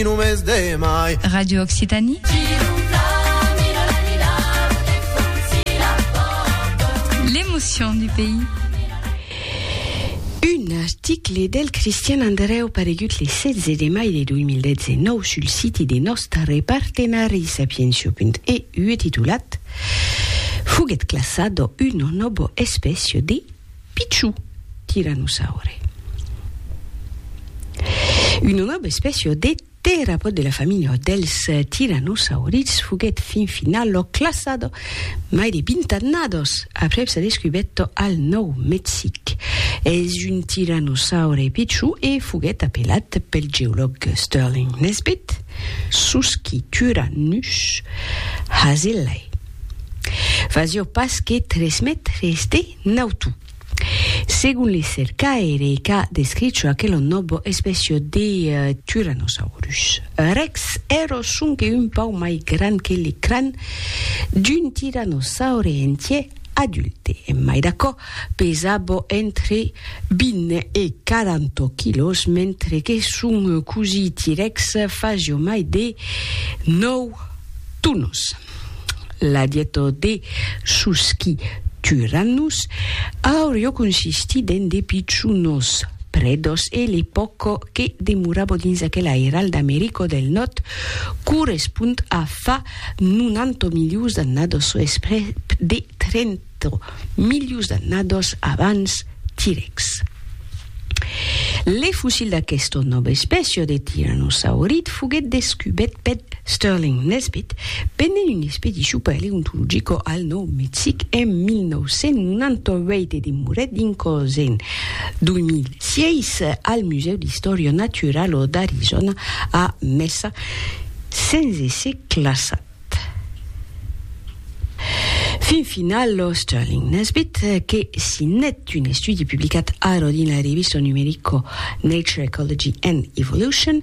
lo mes de mai. Radio Occitanie. L'emotion du pays. Un article del Christian Andreu paregut le 16 de mai de 2019 sul siti de nòstare partenari sapientia.eu e titulat Foguèt classat dò una nòva espècia de pichon. Tyrannosaure Una nòva espècia de terapòd de la familha dels tirannosaurids foguèt fin final classada mai de 20 annadas aprèp sa descubèta al Nòu Mexic. Es un tyrannosaure pichon e foguèt apelat pel geològ Sterling Nesbitt Susquityrannus hazellai. Fasiá pas que tres mètres de Nautu. Segon le cercaire qu'a descricho aquelo nobo especio de Tyrannosaurus rex, ero sonque un pauc mai grand que le cran d'un tirannosaure entier adulte, en mai d'aquò, pesabo entre 20 e 40 quilòs, mentre que son cosí T-rex fasio mai de 9 tonos. La dieta de sos qui turan nos aurio consistit en de pichonos predos e le poc que demorabo dins aquel airal d'Americo del Nòrd correspond a fa 90 milions d'annados o esprès de 30 4 milius d'annados abans T-Rex. Le fossil d'aquesta nòva espècia de tiranosaurid foguèt descubèt per Sterling Nesbitt pendent una expedicion paleontologica al Nòu Mexic en 1998 e demorèt dins còs en 2006 al Musèu d'Istòria Naturala d'Arizòna a Mesa sens èsser classat. Fin final, lo Sterling Nesbitt, que signèt un estudi publicat ara dins la revista numerico Nature Ecology and Evolution,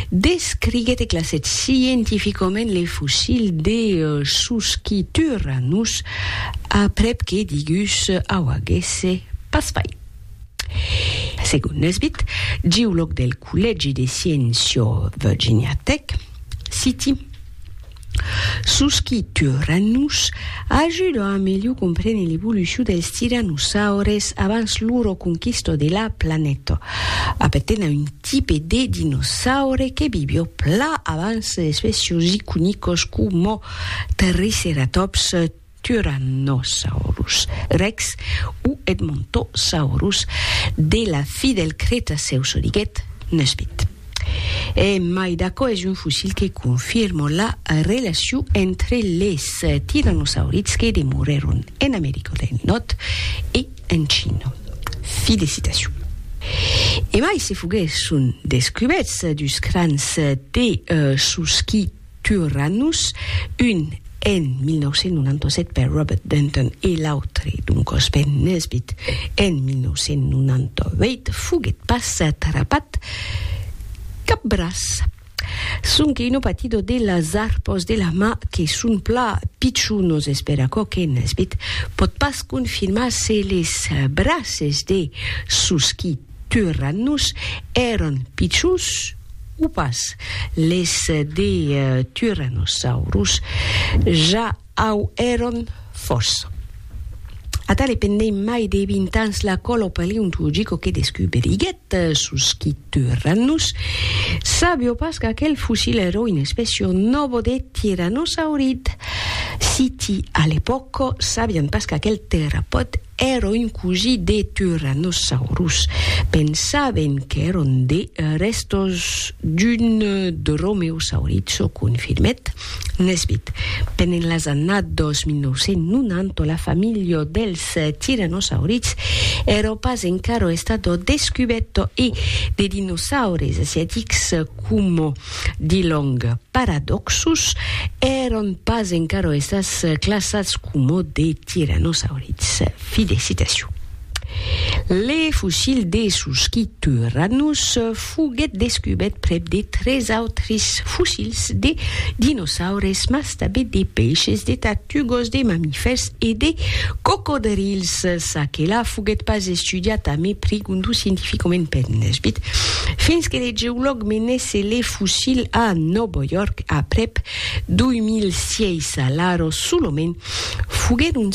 descriguèt e classèt scientificament le fossil de Susquityrannus, aprèp que digus auaguèsse pas fait. Segon Nesbitt, geològ del Collègi de Sciencio Virginia Tech, citi, Sos qui turan nos ajuda a melhor comprene l'evolucion dels tiranosaures abans loro conquista de la planeta. Appartena un tipe de dinosaure que vivió pla abans d'espècios iconicos coma Triceratops, Tyrannosaurus rex o Edmontosaurus de la fi del Cretacèu çò diguèt Nesbitt. E mai d'aquò es un fossil que confirma la relacion entre les tirannosaurids que demorèron en America del Nòrd e en China. Fi de citacion. E mai se foguèsson descubèrts dus crans de sos qui Tyrannus, un en 1997 per Robert Denton e l'autre, doncòs Ben Nesbitt, en 1998, foguèt pas trapat cap braç. Sonque un opatido de las arpos de la mà que son pla pichonos, espèr aquò que Nesbitt pòt pas confirmar se les braces de Susky Turannus èran pichons o pas? Les de Tyrannosaurus ja au èran fòrça. Ata le pendent mai de 20 ans la còlo paleontologico que descuberiguèt sus qui Turannus sabió pas qu'aquel fossil èra una espècia nòva de tiranosaurid, siti a l'epòca sabián pas qu'aquel terrapòd Ero un cosi de Tyrannosaurus. Pensaven qu'èron de rèstos d'un dromeosauriço confirmèt Nesbitt. Pendent las annadas 2990 la familha dels Tyrannosaurids ero pas encara estada descubèrta e de dinosaures asiatics coma di long Paradòxus, èran pas encara estats classats coma de tiranosaurits. Fi de citacion. Le fossil de su Schiturranus foguèt descubèt prèp de tres autris fossils de dinosaures, mas S'abit de peishes, de tartugos, de mamifèrs e de cocodrils. Ça que la foguèt pas estudiat a mai prigundu scientificament per Nesbitt, fins que de geològ menèsse le fossil a Nòbo York aprèp 2006. Alara, solament, foguèron